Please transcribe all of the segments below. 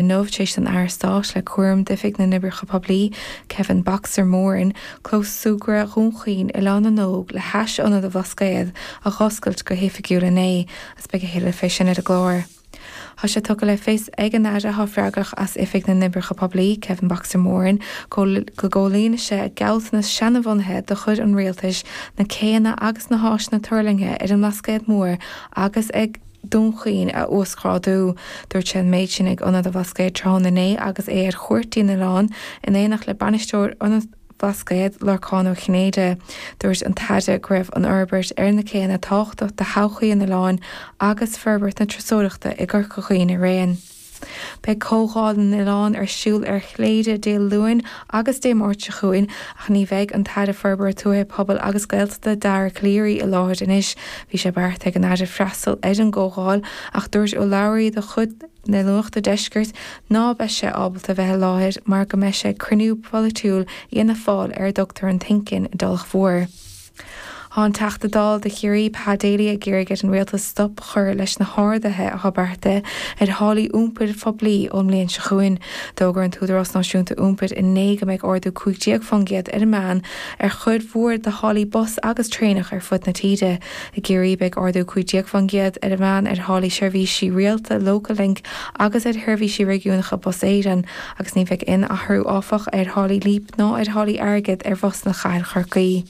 inniu tar éis don Aire Stáit le cúram d'Oifig na nOibreacha Poiblí, Kevin 'Boxer' Moran, clós súgradh Dhún Chaoin, Oileán na nÓg, le hais Ionad an Bhlascaod, a dh'oscailt go hoifigiúil inné, agus beidh a thuilleadh fé sin ar an gclár. Tá sé tugtha le fios ag an Aire atá freagrach as Oifig na nOibreacha Poiblí, Kevin 'Boxer' Moran, go gcomhlíonfaidh sé gealltanas seana-bhunaithe de chuid an Rialtais na céanna agus na háiseanna tuirlingthe ar an mBlascaod Mór agus ag Dún Chaoin a uasghrádú. Dúirt sé an méid sin ag Ionad an Bhlascaoid tráthnóna inné agus é ar chuairt dtí'n oileán in éineacht le Bainisteoir Ionad an Bhlascaoid, Lorcán Ó Cinnéide. Dúirt an tAire go raibh an fhorbairt ar na céanna tábhachtach do thodhchaí an oileáin agus forbairt na turasóireachta i gCorca Dhuibhne araon. Beidh Comhdháil na nOileán ar siúl ar Chléire Dé Luain agus Dé Máirt seo chugainn ach ní bheidh an tAire Forbartha Tuaithe, Pobail agus Gaeltachta Dara Calleary i láthair anois. Bhí sé beartaithe ag an Aire freastal ar an gcomhdháil ach dúirt urlabhraí dá chuid le Nuacht an Deiscirt ná beadh sé ábalta bheith i láthair mar go mbeidh sé ag cruinniú polaitiúil Fhianna Fáil ar a dtugtar an Think in i dTulach Mhór. Tá an Teachta Dála do Chiarraí, Pa Daly, ag iarraidh ar an Rialtas stop a chur leis na harduithe atá beartaithe ar tháillí iompair phoiblí ón mbliain seo chugainn. D'fhógair an tÚdarás Náisiúnta Iompair inné go mbeidh ardú cúig déag fán gcéad ar an meán ar chuid mhór de tháillí bus agus traenach ar fud na tíre. I gCiarraí beidh ardú cúig déag fán gcéad ar an meán ar tháillí seirbhísí rialta Local Link agus ar sheirbhísí réigiúnacha Bus Éireann, agus ní bheidh aon athrú, áfach, ar tháillí Leap ná ar tháillí airgid ar bhusanna Chathair Chorcaí.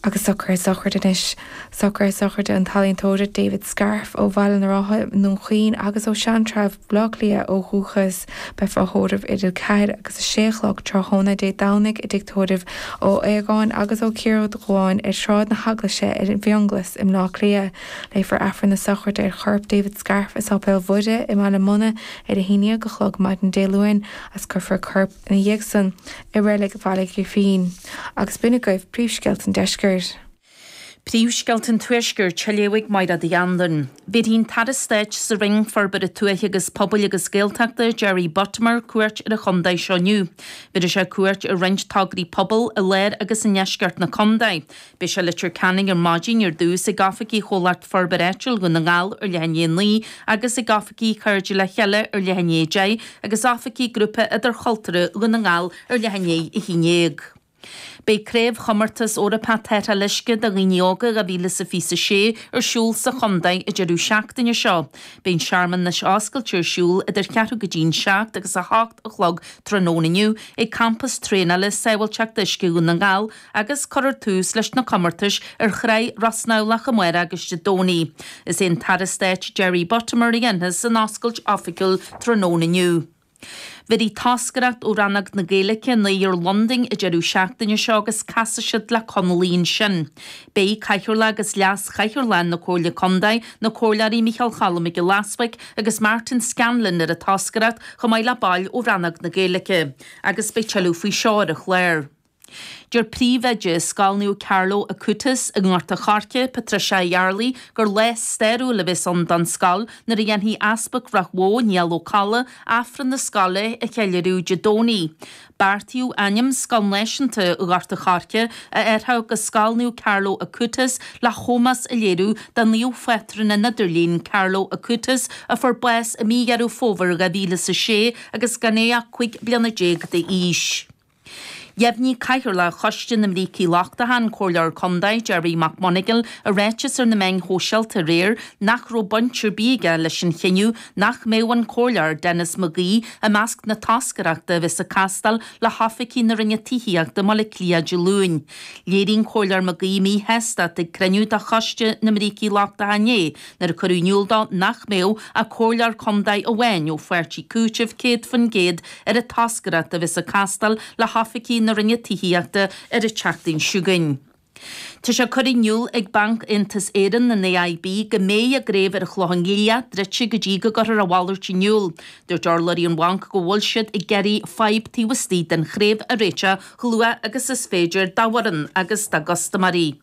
Agus socruithe sochraide anois. Socruithe sochraide an t-ealaíontóir David Scarfe ó Bhaile na Rátha i nDún Chaoin agus ó Sheantrabh i mBleá Cliath ó dhúchas. Beifear á thórramh idir 4 agus 6 a chlog tráthnóna Dé Domhnaigh i dTigh Tórraimh Ó hAodhagáin agus Ó Ciardháin ar Shráid na hEaglaise i bhFionnghlas i mBleá Cliath. Léifear Aifreann na Sochraide ar chorp David Scarff i Sáipéal Mhuire i mBaile Munna ar a haon dhéag a chlog maidin Dé Luain agus cuirfear corp ina dhiaidh san i reilig Bhaile Ghrífín. Agus b'in agaibh príomhscéalta an deiscirt. Príomhscéalta an tuaiscirt á léamh ag Máire Mhic Andain. Bhéarfaidh an tAire Stáit sa Roinn Forbartha Tuaithe agus Pobail agus Gaeltachta, Jerry Buttimer, cuairt ar an chontae seo inniu. Bhéarfaidh sé cuairt ar roinnt tograí pobail i lár agus i ndeisceart na contae. Beidh sé i Leitir Ceanainn ar maidin ar dtús, ag oifigí Chomhlacht Forbartha Áitiúil Dhún na nGall ar leith i ndiaidh a naoi agus ag oifigí Chairde Le Chéile ar leith i ndiaidh a deich agus oifigí Grúpa Idirchultúrtha Dhún na nGall ar leith i ndiaidh a haon dhéag. Beidh Craobhchomórtas Eorpach Tarrtháil Uisce do Dhaoine Óga 2026 ar siúl sa chontae an deireadh seachtaine seo. Beidh an searmanas oscailte ar siúl idir cheathrú go dtí'n seacht agus a hocht a chlog tráthnóna inniu ag Campas Traenála Sábháilteachta Uisce Dhún na nGall, agus cuirfear tús leis na comórtais ar thrá Ros Neamhlach amárach agus Dé Domhnaigh. Is é an tAire Stáit Jerry Buttimer a dhéanfas an oscailt oifigiúil tráthnóna inniu. Beidh toscaireacht ó Rannóg na Gaeilge i ndoire Londain an deireadh seachtaine seo agus casfaidh siad le Conallaigh ansin. Beidh Cathaoirleach agus Leas-Chathaoirleach na Comhairle Contae, na Comhairleoirí Micheál Cholm Mac Giolla Easbuig agus Martin Scanlon ar an toscaireacht chomh maith le baill ó Rannóg na Gaeilge agus beidh tuilleadh faoi seo ar an chlár. Deir príomhoide Scoil Naomh Carlo Acutis i nGort a Choirce, Patricia Yarley, gur lá stairiúil a bheas ann don scoil nuair a dhéanfaidh Easpag Ráth Bhoth, Niall Ó Colla, Aifreann na scoile a cheiliúradh Dé Domhnaigh. Beartaíodh ainm Scoil Náisiúnta Ghort a Choirce a athrú go Scoil Naomh Carlo Acutis le hómós a léiriú do Naomh-Phátrún an Idirlín, Carlo Acutis, a fuair bás i mí Dheireadh Fómhair 2006 agus gan é ach 15 bliana d'aois. Dheimhnigh Cathaoirleach Choiste na mBrící Lochtacha, an Comhairleoir Contae Gerry McMonagle, i ráiteas ar na meáin shóisialta aréir nach raibh baint ar bith aige leis an chinneadh nach mbeadh an Comhairleoir Denis McGee i measc na toscaireachta a bheas ag castáil le hoifigí na Roinne Tithíochta i mBaile Átha Cliath Dé Luain. Léirigh an Comhairleoir McGee míshástacht ag cruinniú de Choiste na mBrící Lochtacha inné, Nuair a cuireadh in iúl dó nach mbeadh ach comhairleoir contae amháin ó pháirtí Cúitimh 100% ar an toscaireacht a bheas ag castáil le hoifigí na Roinne Tithíochta ar an tseachtain seo chugainn, Tá sé curtha in iúl ag Banc Aontas Éireann, an AIB, go mbeidh a gcraobh ar an Chlochán Liath druidte go dtí go gcuirfear a mhalairt in iúl. Dúirt urlabhraí an Bhainc go bhfuil siad ag iarraidh fadhb taobh istigh den chraobh a réiteach chomh luath agus is féidir dá bhfoireann agus dá gcustaiméirí.